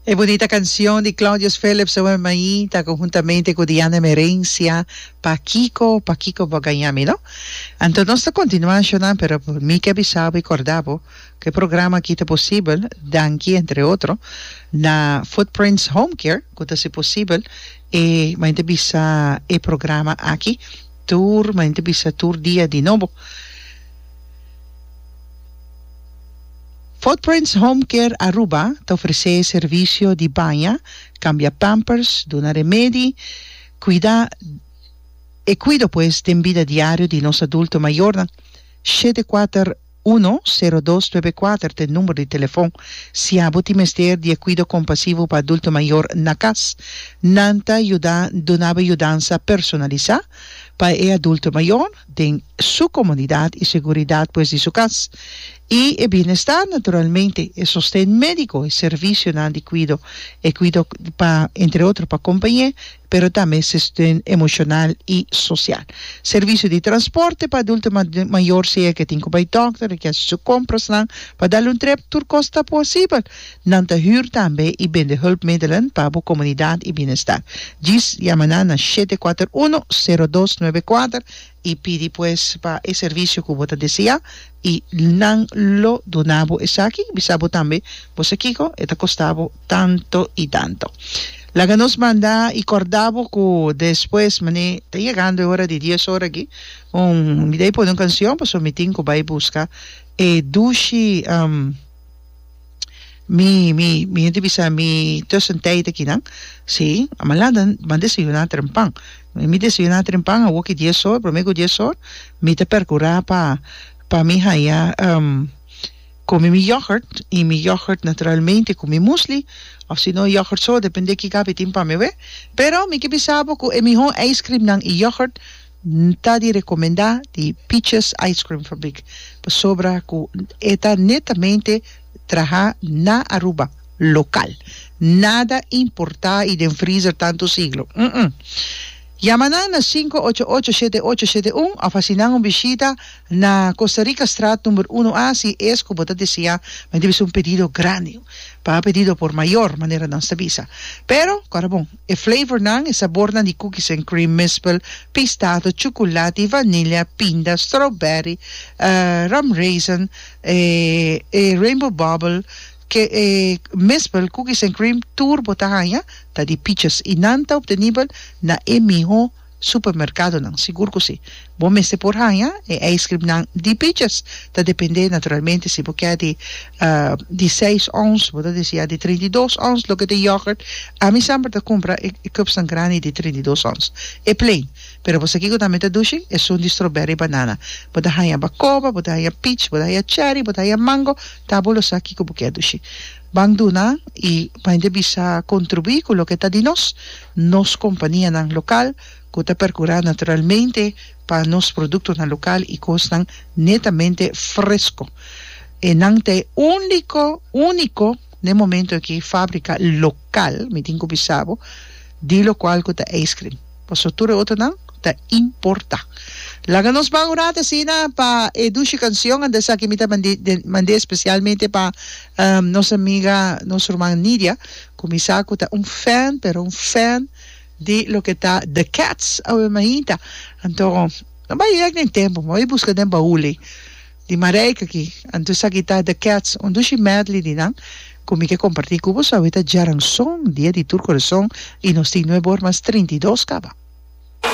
E bunita cancion di Claudius Philips oe mai ta conhuntamente cu Diana Merencia Pa Kiko, Pa Kiko bo a gaña mi no? Anto nos ta continua a shona pero mi ke bisa bo y corda bo cu e programa aki ta posibel danki entre otro na Footprints Home Care cu ta haci posibel e manen ta bisa e programa aki tur manen ta bisa tur dia di nobo. Footprints Home Care Aruba ta ofresé servisio di baña, kambia pampers, duna remedi, kuidá e kuido pues den bida diario di nos adulto mayornan. Shete kuater uno, sero dos nuebe kuater ta e number di telefon si abo tin mester di e kuido kompasivo pa adulto mayor na kas. Nan ta yuda dunaba yudansa personalisá pa e adulto mayor. den su comunidad y seguridad pues di su cas, y e bienestar naturalmente, e sosten medico, e servicionan di cuido, e cuido pa entre otro pa compañe, pero tambe se steun emocional y social. Servicio di transporte pa adulto mayor, sea ke tin ku bay doctor, e ke haci su comprasnan pa dal un trep, tur cos ta posibel. Nan ta hür tambe i bende hulpmiddelen pa bo komunidat i bienesta. Djis yama nan na shete kuater uno, sero dos nuebe kuater i pidi pues pa e servisio ku bo ta deseá i nan lo duna bo esaki i bisa bo tambe bo sa kiko e ta kosta bo tanto i tanto. Laga nos manda i kòrda bo ku despues manera ta yegando e ora di dies ora aki un mi dei pone un kansion pasobra mi tin ku bai buska e dushi. Mi mi mi yente bisa mi tussen tijd akinan si a man lanta man desayuna trempan mi mi desayuna trempan awo ki dies hor prome ku dies hor mi ta perkura pa pa mi haya um komi mi yògurt i mi yògurt naturalmente ku mi musli òf si no yògurt so depende kiko awe tin pa mi awe pero mi ke bisa bo ku e mihó ijskrimnan i yògurt N ta di recomenda di Peaches Ice Cream Fabriek pasobra cu e ta netamente traha na Aruba, local. Nada importa y den freezer tanto siglo. Umm. Yama nan na sinku ocho ocho shete ocho shete un of haci nan un bishita na Costa Rica Straat number uno A si es cu bo ta desea mende bisa un pedido grandi. Pa pedido por mayor manera nos ta bisa. Pero, cora bon. E flavornan, e sabornan di cookies and cream mispel, pistado, chuculati, vanilla, pinda, strawberry, rum raisin, e rainbow bubble, ke e mispel cookies and cream tur bo ta haña ta di piches y nan ta obtenibel na e miho supermerkadonan, sigur ku si. Bo mester por haña e eiskrimnan di piches, ta dependé naturalmente si bo kè di di seis ons, bo ta disi ya di treinta i dos ons, loke ta yògùrt, ami semper ta kumpra e e kupsnan grandi di treinta i dos ons, e plein. Pero bo sa kiko tambe ta dushi? Esun di stroberry banana. Bo ta haña bakoba, bo ta haña pich, bo ta haña cherry, bo ta haña mango, ta bo lo sa kiko bo kè dushi. Ban duna y mainta bisa contribui cu loke ta di nos, nos companianan local cu ta percura naturalmente pa nos productonan local y cosnan netamente fresco. E nan ta e unico, unico n'e momento aki fabrica local, mi tin cu bisabo, di locual cu ta ijscream. Paso tur e otronan ta importa. Laga nos ban un rato asina pa e dushi cancion anda esaki mi ta mande especialmente pa nos amiga nos ruman Nidia cu mi sa cu ta un fan pero un fan di loke ta The Cats awe mainta anto no bay yek den tempo mi bay busca den baul ey. Di Marijke aki, anto sa gitá The Cats un dushi medley di nan ku mi ke kompartí ku boso awita Djaranson, Dia di tur korason i Nos tin nuebe or mas trinta i dos kaba.